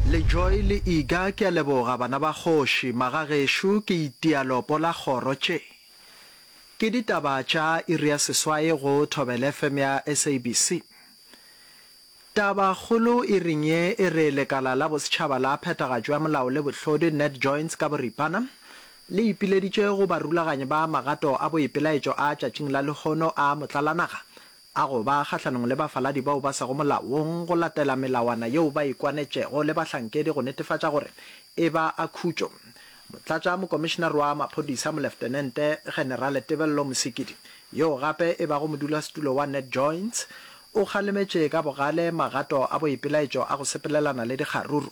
Lejoy le Iga ke a leboga bana ba kgoši, magagešo ke itia lopo la kgoro tše. Ke ditaba tša iri ya seswai go Thobela FM ya SABC. Taba kgolo iring ye e re lekala la bosetšhaba la phethagatšo ya molao le bohlodi, NetJoins ka boripana, le ipileditše go barulaganyi ba magato a boipelaetšo a tšatšing la lehono a motlalanaga a go ba kgahlanong le bafaladi bao ba sego molaong go latela melawana yeo ba e kwanetšego le bahlankedi go netefatša gore e ba a khutšo. Motlatša mokomišenare wa maphodisa Moleftenente Generale Tebello Mosekidi, yoo gape e bago modulasetulo wa NetJoins, o kgalemetše ka bogale magato a boipelaetšo a go sepelelana le dikgaruru.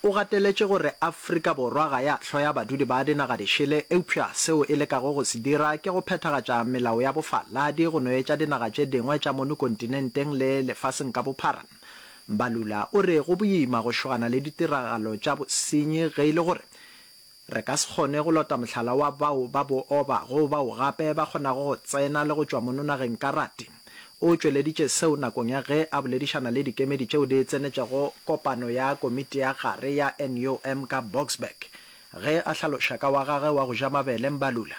O gateletše gore Afrika Borwa ga ya hloya badudi ba dinaga dišele eupša seo e lekago go se dira ke go phethagatša melao ya bofaladi go no etša dinaga tše dingwe tša mono kontinenteng le lefaseng ka bophara. Mbalula o re go boima go šogana le ditiragalo tša bosenyi ge e le gore Re ka se kgone go lota mohlala wa bao ba booba go bao gape ba kgonago go tsena le go tšwa mono nageng karate. O tšweleditše seo nakong ya ge a boledišana le dikemedi tšeo di tsenetšego kopano ya komiti ya gare ya NUM ka Boksburg, ge a hlaloša ka wa gage wa go ja mabele Mbalula.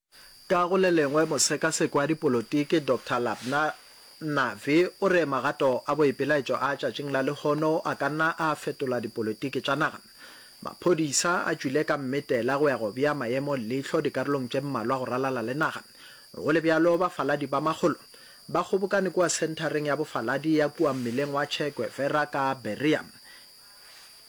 Ka go le lengwe, mosekasekwa dipolotiki Doctor Labna Navi o re magato a boipelaetšo a tšatšing la lehono a ka nna a fetola dipolotiki tša naga. Maphodisa a tšwile ka mmitela go ya go bea maemo leihlo dikarolong tše mmalwa go ralala le naga. Go le bjalo, bafaladi ba makgolo ba kgobokane kua senthareng ya bofaladi ya kua mmileng wa Che Guevera ka Berea.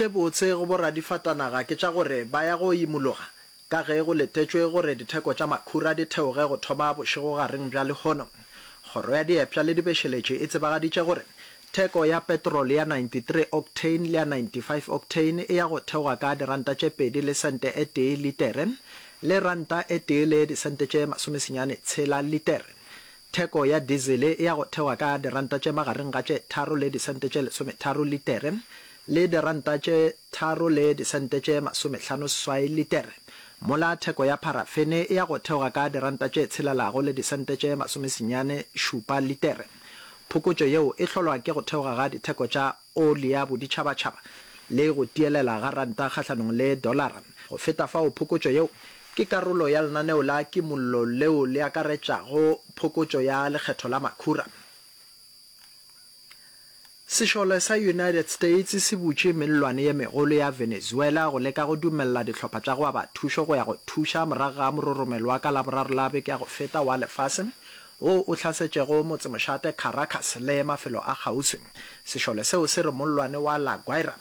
Tše botse go boradifatanaga ke tša gore ba ya go imologa ka ge go letetšwe gore ditheko tša makhura di theoge go thoma bošegogareng bja lehono. Kgoro ya Diepša le Dibešeletše e tsebagaditše gore theko ya petrol ya 93 octane le ya 95 octane e ya go theoga ka diranta tše pedi le sente e tee litere le ranta e tee le disente tše masomesenyane tshela litere. Theko ya dizele e ya go thewa ka diranta tše magareng ga tše tharo le disente tše lesometharo litere le diranta tše tharo le disente tše masomehlano seswai litere, mola theko ya pharafene e ya go theoga ka diranta tše tshelelago le disente tše masomesenyane šupa litere. Phokotšo yeo e hlolwa ke go theoga ga ditheko tša oli ya boditšhabatšhaba le go tielela ga ranta kgahlanong le dolara. Go feta fao, phokotšo yeo ke karolo ya lenaneo la kimollo leo le akaretšago phokotšo ya lekgetho la makhura. Sešole sa United States se butše mellwane ye megolo ya Venezuela go leka go dumelela dihlopha tša go aba thušo go ya go thuša morago ga mororomelo wa ka Laboraro la beke ya go feta wa lefase wo o hlasetšego motsemošate Caracas le mafelo a kgauswi. Sešole seo se re mollwane wa La Guaira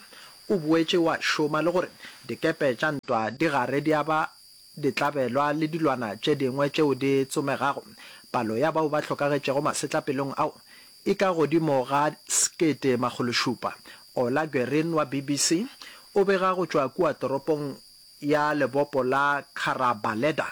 o boetše wa šoma le gore dikepe tša ntwa di gare di aba ditlabelwa le dilwana tše dingwe tšeo di tsomegago. Palo ya bao ba hlokagetšego masetlapelong ao e ka godimo ga sekete makgolo šupa. Ola Guerin wa BBC o bega go tšwa kua toropong ya lebopo la Carabaleda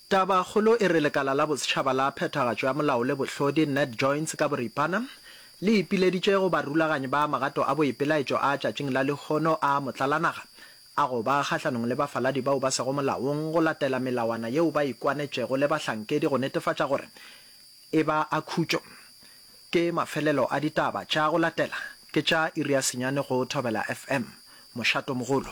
Tabakgolo e re lekala la bosetšhaba la phethagatšo ya molao le bohlodi, Ned Joins ka boripana, le ipileditše go barulaganyi ba magato a boipelaetšo a tšatšing la lehono a motlalanaga a go ba kgahlanong le bafaladi bao ba sego molaong go latela melawana yeo ba ikwanetšego le bahlankedi go netefatša gore e ba a khutšo. Ke mafelelo a ditaba tša go latela, ke tša iri ya senyane go Thobela FM. Mošatomogolo.